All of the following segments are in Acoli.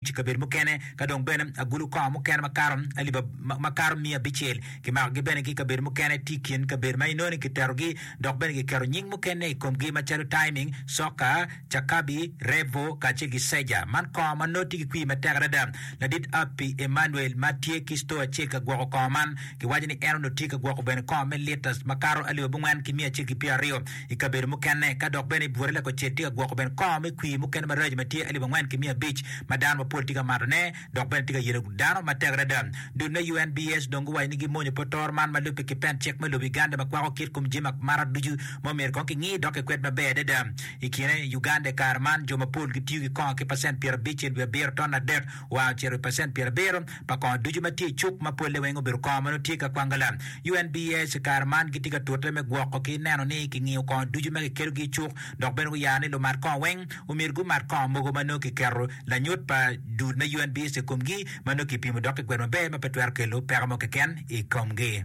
I kabedo mukene, ka dong bene agulu kor mukene makato aliba makato miya abicel kimakogi bene ki i kabedo mukene, tye i kin kabedo ma inoni kiterogi dok bene kiketo nying mukene i komgi macalo Taiming, Soka, Cakabi, Revo, kacel ki Seja. Man kor ma nongo tye ki kwir matek adada. Ladit Api Emmanuel ma tye ki cito acel ka gwoko kor man, kiwaco ni en onongo tye ka gwoko bene kor me litas makato aliba abongwen ki miya acel ki pyeraryo. I kabedo mukene, ka dok bene i bwote lakucel tye ka gwoko bene kongo me kwir mukene maraco ma tye alip angwen ki miya abic ma dano mapol tye ka matone dok bene tye ka yelo dano matek adada. Dul me UNBS dong guwaco ni gimonyo pot toro man ma lubbe ki pen cik me lobo Uganda ma kwako kit kom jami ma mara ducu ma omyero kong kingi dok kikwed maber adada. I kine, Uganda i kare man jo mapol gitiyo ki kongo ki pacent pyer abic-cel wiye abiro ton adek, wa ocito i pacent pyer abiro pa kongo ducu ma tye i cuk ma polle weng obedo kongo ma nongo tye ka kwangala. UNBS i kare man gitye ka tute me gwoko ki neno ni kingiyo kongo ducu ma kikelogi i cuk dok bene guyaro ni lumat kongo weng omyero gumat kongo mogo ma nongo kiketo lanyut pa dul me UNBS i komgi ma nongo kipimo dok kigwedo maber ma pe twero kelo peko mo keken i komgi.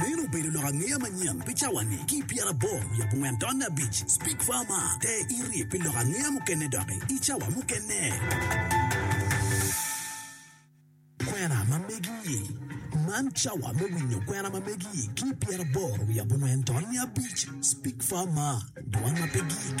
Meno obedo lok angeya manyen pi cawa-ni. Ki i pyeraboro wiye abongwen taun abic, Speke Farmer te iri pi lok angeya mukene doki i cawa mukene. Kwena ma megi-i, Man cawa me winyo kwena ma megi-i ki i pyeraboro wiye abongwen taun abic, Speke Farmer, Dwan ma pe gik.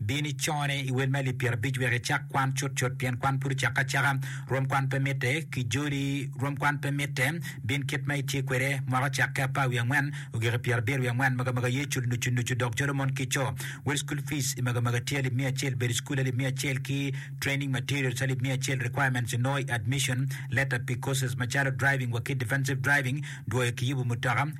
Bin icone i wel me alip pyerabic wek icak kwan cutcut, pien kwan pud ocakke acaka. Rwom kwan pe mitte, ki joli rwom kwan pe mitte. Bin kit ma itye kwede, mwaka ocakke apar wiye angwen, ogike pyerabiro wiye angwen, magamaga ye culo nucu nucu dok jolo mon ki co. Wel school fees i magamaga tye alip miya acel, bedo i cukul alip miya acel ki training materials alip miya acel, requirements onongo i admission letter pi courses macalo driving wa ki defensive driving, dwoyo ki yubu mutoka,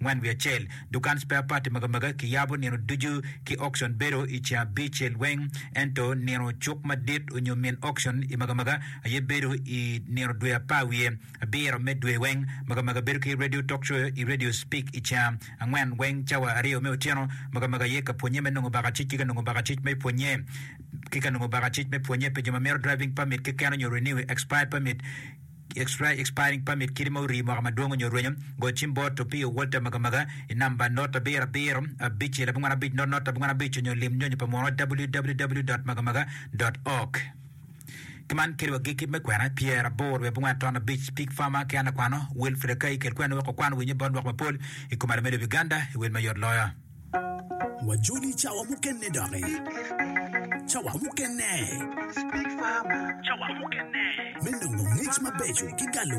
Ngwen wiye acel, Dukan spare part magamagi kiyabo nino ducu ki auction bedo i ceng abicel weng, ento nino cuk madit onyo min auction i magamaga aye bedo i nino dwe apar wiye abiro me dwe weng. Magamaga bedo ki radio talk show i radio speak i ceng angwen weng cawa aryo me otyeno. Magamaga aye ka pwonye me nongo bakacic ki ka nongo bakacic me pwonye ki ka nongo bakacic me pwonye pi jo ma mito driving permit keken onyo renew expired permit. Expiry, Expiring Permit, Kiti ma orii mwaka madwong onyo rwenyo, go cim bot Opio Walter Magamaga i namba not abiro abiro abicel abongwen abic not not abongwen abic onyo lim nyonyo pa muno www dot magamaga dot org. Ki man kede wagik kit me kwena pyer aboro wiye abongwen aton abic Pig Farmer ki an akwano Wilfred Akai kel kweno wek okwan winyo bot lwak mapol i kom alame lobo Uganda i wel mayot loyo. Wajoli cawa mukene doki. Cawa mukene. Cawa mukene. Me nongo ngec mabeco ki galo